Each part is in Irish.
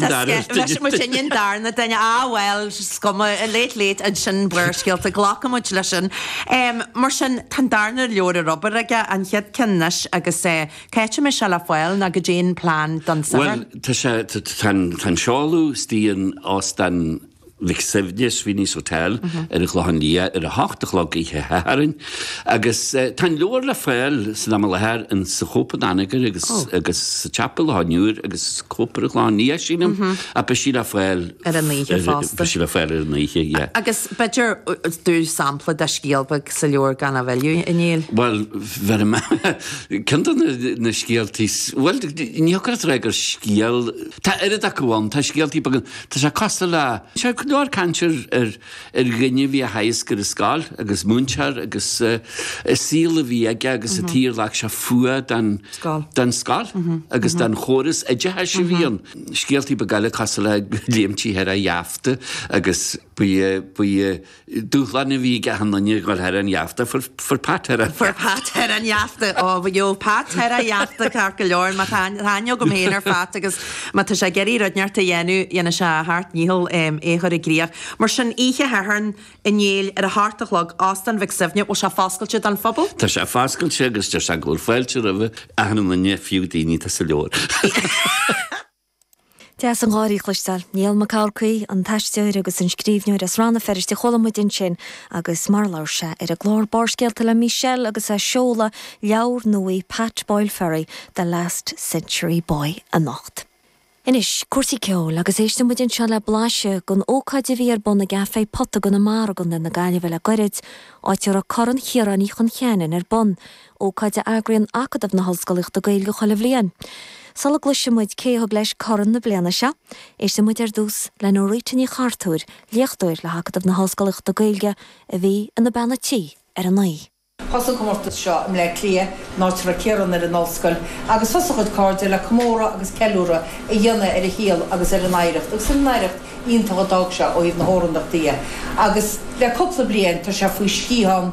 Bheireann muid sin an darna duine, ah bhuel, is cuma, late late, ansin Barrscéalta, glacfaidh muid leis sin. Mar sin, tá an darna leabhar ar obair aige, an chéad ceann anois agus cá háit a mbeidh sé le fáil nó caidé an plean don Satharn. Bhuel, tá sé, tá an seoladh istigh in Óstán. Mhic Suibhne, Sweeney's Hotel, ar an Chlochán Liath ar a hocht a chlog oíche Shathairn agus tá an leabhar le fáil san am i láthair insa Chóp in Anagaire agus agus sa tsiopa leabhar agus sa Chóp ar an Chlochán Liath sílim ach beidh sé le fáil ar an oíche fosta. Beidh sé le fáil ar an oíche, yeah. Agus b'fhéidir do sampla de scéal beag sa leabhar gan a mhilleadh a Néill? Bhuel, bheir mé ceann de na na scéaltaí, bhuel, ní thiocfadh leat a rá gur scéal, tá oiread acu ann, tá scéaltaí beaga. Tá sé cosúil le. Tá go leor cainte ar dhuine a bhí á theagasc ar an scoil agus múinteoir agus an saol a bhí aige agus an dóigh ar ghlac sé fuath don scoil agus don chóras oideachais a bhí ann. Scéaltaí beaga eile cosúil le léimtí thar an gheafta agus ba é dúshlán a bhí ag achan duine a dhul thar an gheafta. Fuair Pat thar an. Fuair Pat thar an gheafta. Ó, gheobhadh Pat thar an gheafta ceart go leor. Mar tá aithne agam féin ar Phat agus má tá sé ag iarraidh rud inteacht a dhéanamh, dhéanfaidh sé a sheacht ndícheall é a chur i gcríoch. Mar sin, oíche Shathairn a Néill, ar a hocht a chlog, Óstán Mhic Suibhne, bhfuil sé foscailte don phobal? Tá sé foscailte agus deir sé go bhfuil fáilte roimh achan duine, fiú daoine atá sa leabhar. Deas an gháirí a chloisteáil. Niall Mac Eachmharcaigh, an t-aisteoir agus an scríbhneoir as Rann na Feirste, chuala muid ansin agus mar a labhair sé ar an gclár Barrscéalta le Michelle agus é ag seoladh leabhar nuaí Pat Boyle Ferry, The Last Century Boy anocht. Anois, cúrsaí ceoil, agus éisteann muid anseo le blaiseadh den ócáid a bhí ar bun i gCafé Pota i gConamara i gContae na Gaillimhe le gairid, áit a raibh Corn Chiaráin Uí Chon Cheanainn ar bun. ócáid a eagraíonn Acadamh na hOllscolaíochta Gaeilge chuile bhliain. Sula gcloisfidh muid cé a thug leis corn na bliana seo, éistfidh muid ar dtús le Norita Ní Chartúir, léachtóir le hAcadamh na hOllscolaíochta Gaeilge, a bhí ina bean a' tí ar an oíche. Thosaigh an comórtas seo i mBleá Cliath, in áit a raibh Ciarán ar an ollscoil, agus thosaigh a chuid cairde le comóradh agus ceiliúradh a dhéanamh ar a shaol agus ar an oidhreacht agus ar an oidhreacht iontach a d'fhág sé ó thaobh na hamhránaíochta de agus le cúpla bliain tá sé faoi sciathán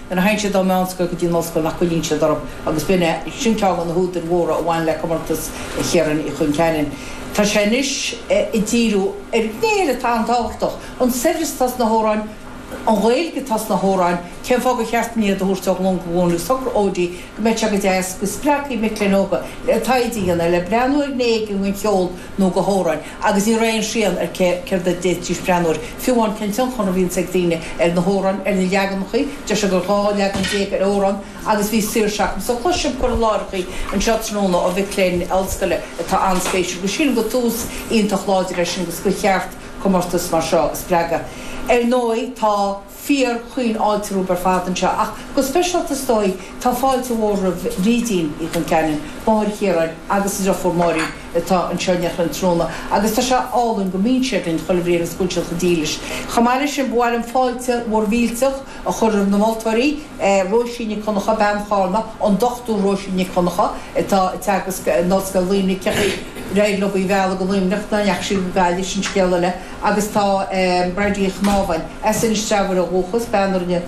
Nuair a théann siad ón meánscoil go dtí an ollscoil nach gcoinníonn siad orthu agus b'in é, sin ceann de na húdair mhóra a bhain le comórtas Chiaráin Uí Chon Cheanainn. Tá sé anois ag díriú ar ghné eile atá an-tábhachtach, an saibhreas atá sna hamhráin, an Ghaeilge atá sna hamhráin, cén fáth gur cheart dúinn iad a thabhairt ó ghlúin go glúin agus socair Odi, go mbeidh sé go deas, go spreagfaidh mic léinn óga le taighde a dhéanamh, le breathnú ar ghné éigin den cheol nó de na hamhráin, agus ní raibh aon srian ar cé, céard a d'fhéadfaidís breathnú air, fiú amháin cén tionchar a bhíonns ag daoine ar na hamhráin, ar na leaganacha, go raibh 12 leagan ar amhrán agus bhí saoirse acu. So cloisim cur i láthaireacha anseo tráthnóna ó mhic léinn ollscoile atá an-spéisiúil agus sílim gur tús iontach láidir é sin agus gur cheart comórtas mar seo a spreagadh. Ar ndóigh tá. Fearaim caoinfháilte romhaibh ar fad anseo, ach go speisialta is dóigh. Tá fáilte mhór roimh Bhrídín Uí Chon Cheanainn, máthair Chiaráin, agus a deirfiúr Máirín atá anseo in éineacht linn tráthnóna agus tá sé álainn go mbíonn siad linn chuile bhliain agus go bhfuil siad chomh dílis. Chomh maith leis sin ba mhaith liom fáilte mhór mhillteach a chur roimh na moltóirí, Róisín Nic Dhonncha, bean Charna, an Dr Róisín Nic Dhonncha atá ag teagasc in Ollscoil Luimnigh, Ceapaigh, arnó a bealach go Luimneach, nach ndeachaigh sí go Gaillimh, sin scéal eile! agus tá Bríd Ní Mhaoilchiaráin, as Inis Treabhair ó dhúchas, bean a rinne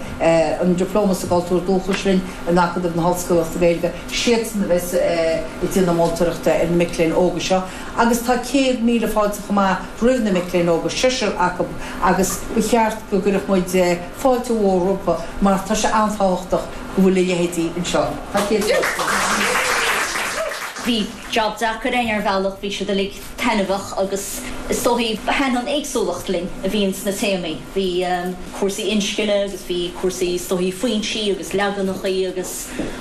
an Dioplóma sa gCultúr Dúchais linn in Acadamh na hOllscolaíochta Gaeilge, siadsan a bheas ag déanamh moltóireachta ar na mic léinn óga seo agus tá céad míle fáilte chomh maith roimh na mic léinn óga, seisear acu, agus ba cheart go gcuirfeadh muid fáilte mhór rompu mar tá sé an-tábhachtach go bhfuil a leithéidí anseo. Tá céad míle fáilte. Bhí jab deacair é ar bhealach, bhí siad uilig. taitneamhach agus is dóigh thaithin an éagsúlacht linn a bhí insna téamaí. Bhí cúrsaí inscne agus bhí cúrsaí is dóigh foinsí agus leaganacha agus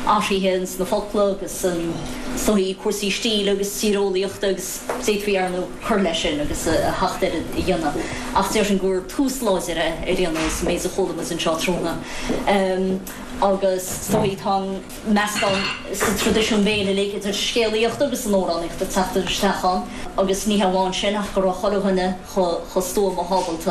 athruithe insna focla agus is dóigh cúrsaí stíle agus tíreolaíochta agus d'fhéadfaí arnú cur leis sin agus a sheacht oiread a dhéanamh ach déarfainn gur tús láidir é ar aon nós an méid a chuala muid anseo tráthnóna agus is dóigh tá an meascán sa traidisiún béil uilig, idir scéalaíocht agus an amhránaíocht ag teacht isteach ann agus ní hamháin sin ach go raibh chuile dhuine chomh stuama, chomh hábalta,